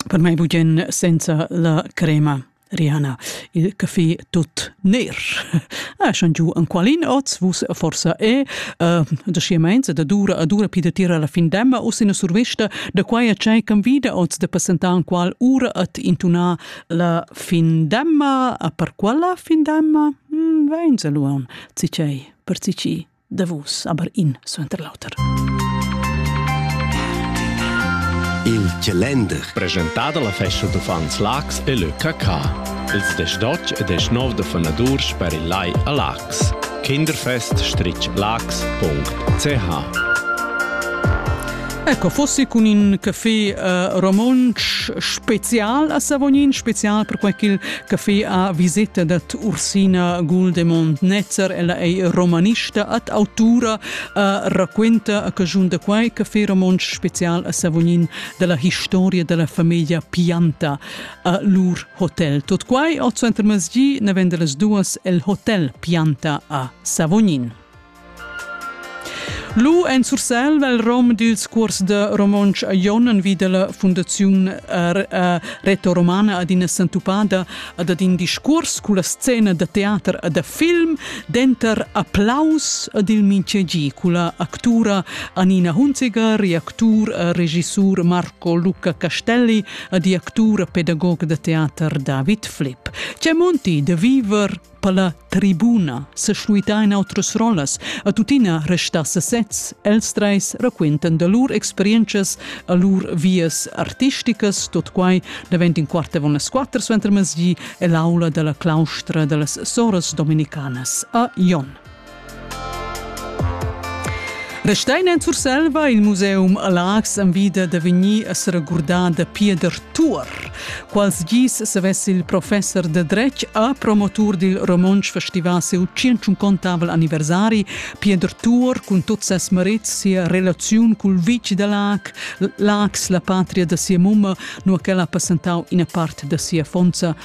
Per mai bugen senza la crema. Rihanna, il caffè tut ner. Ah, schon giu an qualin oz, vus forsa e, uh, da schiemainza da dura a dura pi da tira la fin demma o sina survista da quai a tschai can vida oz de passentan qual ura at intuna la fin demma, a per quala fin demma? Hmm, vein se luam, cicei, per cici. davos aber in suenter l'auter. Il calender presentà dalla festa d'uffants Lax e le Cacà. Ils 18 e 19 de fonadurs per il Lai a Lax. kinderfest-lax.ch Ecco, fossi con in caffè uh, romontsch special a Savognin, special per quel Café a viseta dat Ursina Guldemond Netzer, ella ei romanista ad autura, uh, raquenta a cajun da quai Café Romontsch special a Savognin della historia della famiglia Pianta a lur hotel. Tot quai oz entr masgi ne vende las duas el hotel Pianta a Savognin. Lu en Surselva il rom dils cuors da romontsch a Jon envi dalla Fundaziun retoromana adina sentupada ad ad in discuors culla scena da teater e da film, denter applaus ad il mintgegi culla actura Anina Hunziger e actur e regissur Marco Luca Castelli ed actur e pedagog da teater David Flipp. C'è monti da viver Per la tribuna se schluitain outras rollas, a tuttina resta sesez, els treis raquentan da lur experiences a lur vias artisticas, tot quai davent in quart avon las quatter suenter mesdi e l'aula della claustra dellas soras dominicanas a Jon. Restein en Surselva il museum Lax envida da vegnir a seragurdar da Pieder Tuor. Quals gis savess il professor de dretg a promotur dil romontsch festival seu 150 anniversari Pieder Tuor cun tot ses marits sia relaziun cul vici da Lac, Lax la patria da sia mumma, nu che l'ha passentau ina part da sia fonza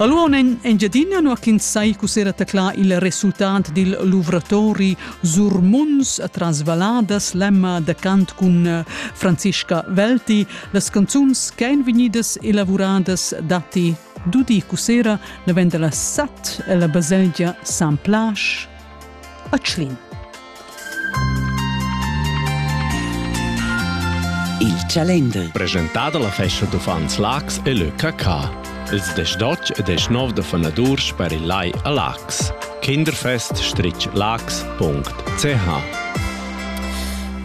Allora in Engiadina nu ch'ins sai cussera taclà il resultat dil luvratori sur munds tras valladas l'emma da cant cun eh, Franziska Velti. Las canzuns ch'ein vegnidas elavuradas datti dudi cussera la venda la sat e la baselgia San Plash a Tschlin. Il Chalender. Presentà dalla festa d'uffants Lax e le Cacà. Ils 18 e 19 da fonadurs per il Lai a Lax. Kinderfest-lax.ch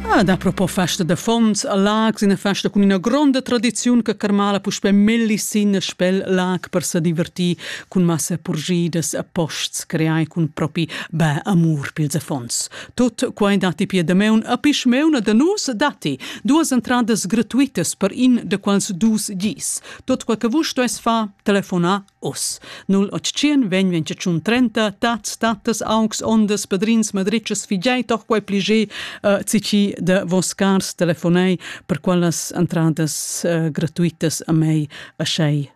Ah, da propo festa de fonds a Lax, una festa con una gronda tradizione che carmala puspe melli sin spel Lac per se divertir cun massa purgidas a posts creai cun propi bä amur pils affons. Tot quai datti pia dameun a pischmeuna da nus datti duas entradas gratuitas per in da quals dus gis. Tot quai che vus stues fa telefona os. 0800 vegn 21 30 tats tatas augs ondas padrins madritschas figei toch quai plige uh, cici de vos cars telefonei per quellas entradas uh, gratuitas a mei a schei